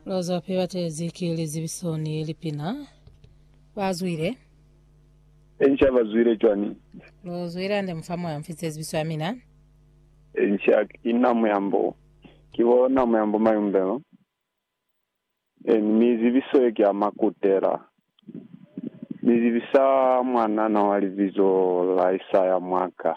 Lozo phe batezi ki lizibiso ni lipina. Ba zwile. Enca ba zwile cwani? Lo zwile ande mufa moya mfi zezibiso ya mina. Enca ki na muyambo. Ki bo na muyambo mayumbelo. Eni mi zibiso ye ki ya makutela. Ni zibisa mwanana wa libizo la Isaya mwaka.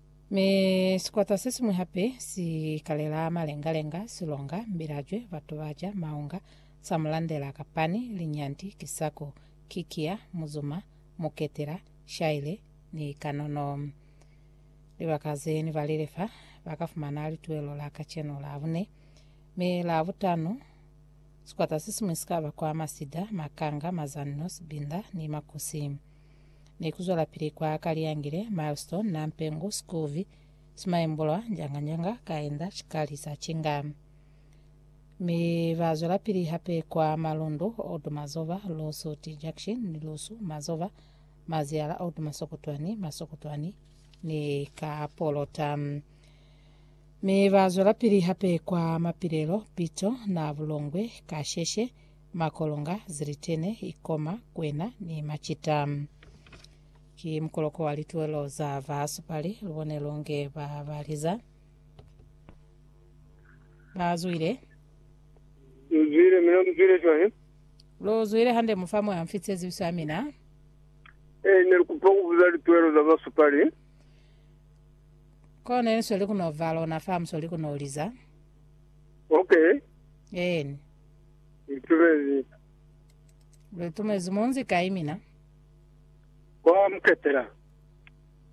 Mi sikwata sesiñwi hape si kalela malenga-lenga, silonga, mbilajwe, batu baca maunga, samulandela, kapani, linyanti, kisako, kikia, muzuma, muketela, shaile, ni kanono. Libaka ze ni balile fa, ba ka fumana lituelo la kacenu la bune. Mi la butano, sikwata sesiñwi si ka bakwa masida, makanga, mazanno, sibinda, ni makusi. ni ku zwelapili kwa Kaliyangile, Milestone, Nampengu, Skuvi, Simaembulwa, Njanganyanga, Kaenda, Chikali, Sachinga. Mi ba zwelapili hape kwa Malundu, Old Mazova, Lusu T Junction ni Lusu, Mazova, Maziyala, Old Masokotwani, Masokotwani ni ka Polota. Mi ba zwelapili hape kwa Mapilelo, Pito, Nabulongwe, Kasheshe, Makolonga, zilitene, ikoma, kwena, ni macita. Ki mukoloko wa lituelo za ba supali, lubone longe ba ba liza, ba zwile. Lu zwile, mina mu zwile cwañi? Lu zwile hande mu fa mwa mfi tsezibiso ya mina. Eh, ne lu kupa ku buza lituelo za ba supali. Ko ne lu sweli ku no ba lona fa mu sweli ku no liza. Okay. Eeni. Ngitumezi. Lutumezi munzi kai mina? Kwa Muketela.